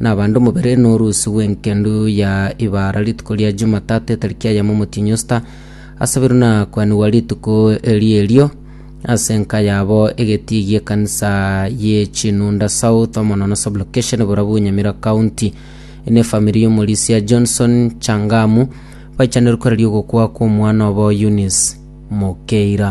Nabande omobere norusi bw'engendu ya Ibara rituko ria Jumatatu etariki ya yamo omotienyi Osita, asabirwe na kwanigwa rituko eri erio ase enka yabo egetii gi'ekanisa ye Chinunda South Omonono Sublocation borabu Nyamira County. Eye nefamiri y'omorisia Johnson Changamu baichaneirwe koraria ogokwa kw'omwana obo Eunice Mokeira.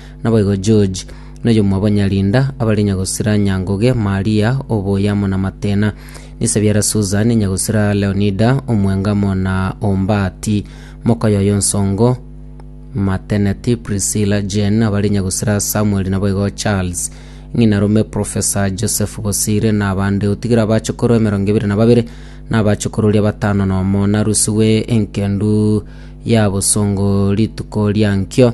Naboigo George, noyomwabonyarinda abare nyagosira Nyangoge, Maria, oboyia amo namatena. Nisabiara Susan, nyagosira Leonida, omwenga amo na Ombati, mokaye oye onsongo, Mateneti, Priscilla, Jane, abare nyagosira Samuel naboigo Charles. Ng'ina rome Professor Joseph Bosire nabande, otigire abachokoro emerongo ebere nababere, nabachokororua batano nomo, narusigwe enkendu ya bosongo rituko riankio.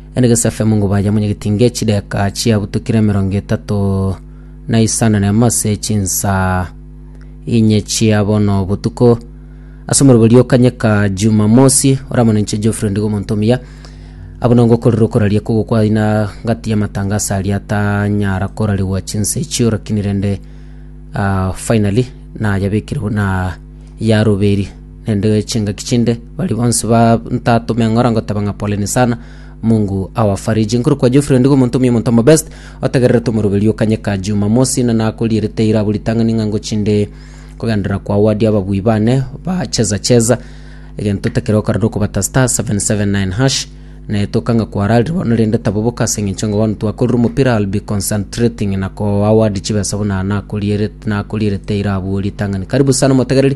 Ere Gesafi amongo baye amonyegeti inga echideka chiabutokire emerongo etato na isano na emo ase chinsaa inye chia bono botuko. Ase omorua oria okanyeka Jumamosi, oramonenche Geoffrey Ndigo omonto omuya, abwo nigo ngokorera okoraria kogokwaina gati y'amatangaso aria atanyara korarigwa chinsa echio rakini rende ah, finally nayabekire buna yaroberi. nende chingaki chinde, baria bonsi bantatome ng'ora ngoteba ng'a poleni sana mungu awafariji nkuru kwa jofre ndigo omonto omia omonto omobest otegererete omoroberio kanyeka jumamosi na nakorierete ira abo ritang'ani ng'a ngochinde kogenderera kwa wadi ababui bane bacheza cheza egento tekero okarora okobata star 779 hash netoka ng'a kwararire bono rende taboboka ase eng'encho ng'a bono twakorire omopira I'll be concentrating na koa wadi chibesa buna nakorierete nakorierete ira abwo ritang'ani karibu sana omotegereri